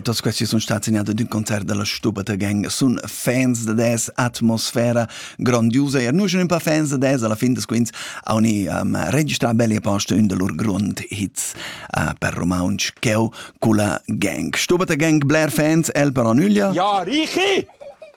Tos questi sono stati segnati di un concerto della Stupata Gang, sono fans de des, atmosfera grandiosa e noi sono un po' fans de des, alla fine des quints oni um, registrà belli posti un de lur grundhits uh, per romansch cheu culla gang. Stupata Gang, Blair fans, el per Onüglia. Ja, Richi!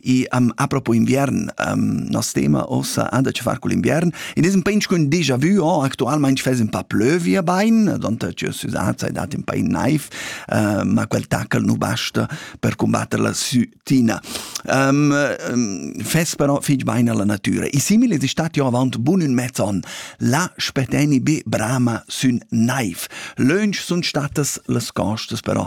E um, a propo inviern, um, nos tema ossa anda che far col inviern. In isem pench cun déjà vu, oh, actualmente fes un pa plövia bain, donta che susat sei dat un pa in knife, uh, ma quel tackle nu basta per combatter la sutina. Um, um, fes però fig bain alla natura. E simile è stat jo avant bun un mezz on, la speteni be brama sün knife. Lönch sunt statas las costas però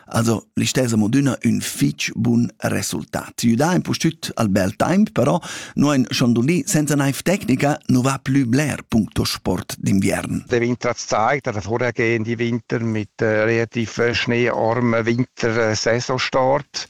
Also, l'istessa moduna ün fich bun resultat. Ti da in pustüt al bel temp, però, no in Schondolì senza naiv tecnica no va plü bler puncto sport d'inviern. Der Winter hat es gezeigt, dass vorhergehend die Winter mit äh, relativ äh, schneearmen Wintersaisonstart